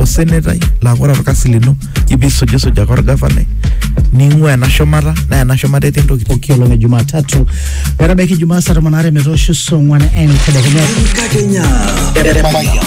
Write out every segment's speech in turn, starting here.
osenetai laa ore orkasi lino ipisujisuj ake orgavanai ning'ua ena shumata naa ena shumata etii entoki pooki olong e Jumatatu metabaiki Jumaa saa tomon aare metoosho saa ong'wan entedekenya. Enkakenya. Mayan.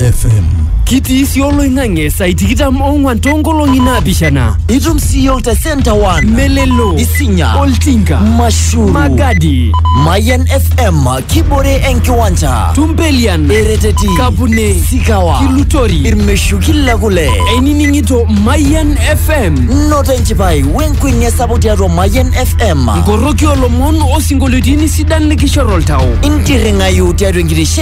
FM. kitii sii oloing'ang'e saai tikitam ong'wan toonkolong'i naapishana itum sii yiok te senta one melelo isinya oltinka mashuru magadi mayan fm kibore enkiwanja tumpelian ereteti kapune sikawa kilutori irmeshuki le kule einining'ito mayan fm noto enchipai wenkuenia sapuk tiatua mayan fm nkoroki olomon osinkolioitin sidan likishor oltau intirring'ayu tiatua enkitisho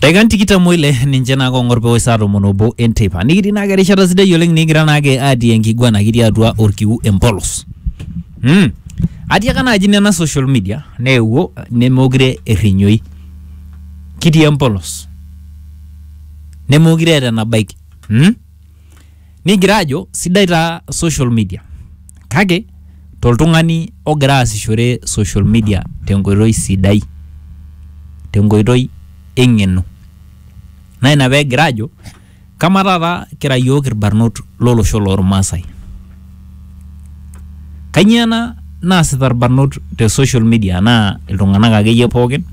Daikan tikitam oile ninche naa kong'or pewosh saa tomon obo enteipa. Nikitii naake erishata sidai oleng nikigira naake atii enkiguana kitii atua orkiu empolos. Mm. Atiaka naaji nena social media neewuo nemeokure errinyoi. Kitii empolos. Nemeokure eeta enabaiki. Mm? nigira ajo sidai taa social media kake toltung'ani ogira aasishore social media tenkoitoi sidai tenkoitoi eng'eno naa ina pegira ajo kama taata kira yiok irbarnot lolosho lormasae kanyio ena naasita irbarnot te social media naa iltung'anak akeyie pookin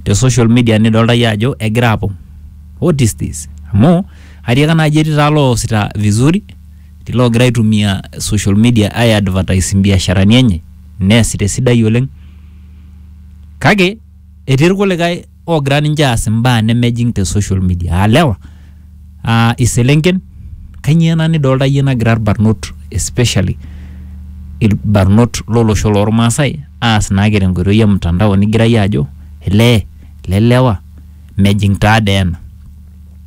te social media nidolta iyie ajo egira apong what is this amu. Atiaka naaji etii taa loosita vizuri, etii loogira aitumia social media ai advertise mbiasharani enye neesita esidai oleng. Kake etii irkulikae oogira ninche aas imbaa nemejing te social media aa lewa, aa iselenken. Kanyoo ena nidolita iyie nagira irbarnot especially irbarnot lolosho lormaasai aas naake tenkoitoi e mtandao nigira iyie ajo elee, ele lewa mejing taadoi ena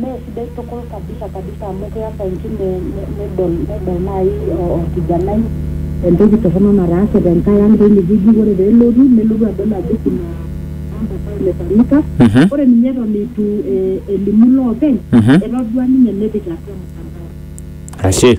Mee sidai tukul kabisa kabisa amu keas enkine nedol nedol nai orkijanai entoki torrono nataase tenkae ang teine wueji, ore pelotu nelotu adol ajo kuna mambo ambayo imefanyika. Mhm. Ore ninye eton eitu eh, elimu loopeny, Mhm. etodua ninye nepik atua mtandao. Ashe.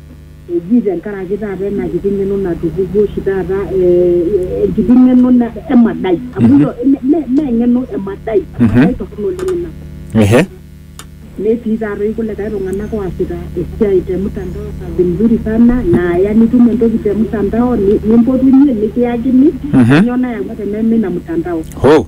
eji tenkaraki taata ena kiti ng'eno natupukuo oshi taata eh, enkiti ng'eno na- emadai amu ilo- me- me- me eng'eno emadai emadai torrono oleng ina ehe netii taatoi kulikae tung'anak oasita esiai te mtandao kazi mzuri sana naaya nitum entoki te mtandao ni- nimpotunye nikiyakini Mhm. kanyoo nayawua teneme ina mtandao ho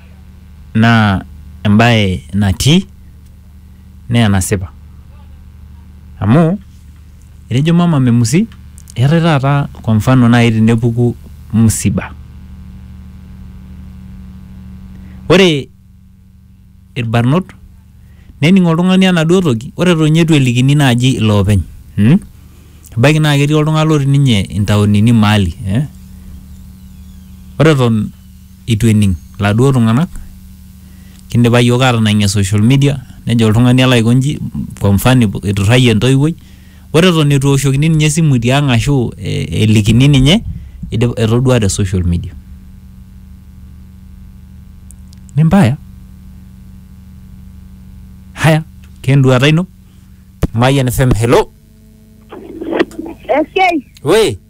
naa embae natii naa enasipa amu etejo mama memusi eetae taata kwa mfano nai tenepuku msiba ore irbarnot nening oltung'ani enaduo toki ore eton ninye itu elikini naaji iloopeny mmh ebaiki naa ketii oltung'ani lotii ninye intaonini maali eh ore eton. eitu ening laduo tung'anak kindipa yiok atanang'ie social media nejo oltung'ani alo aiko nji kwa mfano eiturrayie entoiwuoi ore eton eitu eoshokini ninye esimu tiang ashu eh, elikini ninye idip- etodua te social media ni mbaya haya kenduata ino Mayian FM hello Esiai. we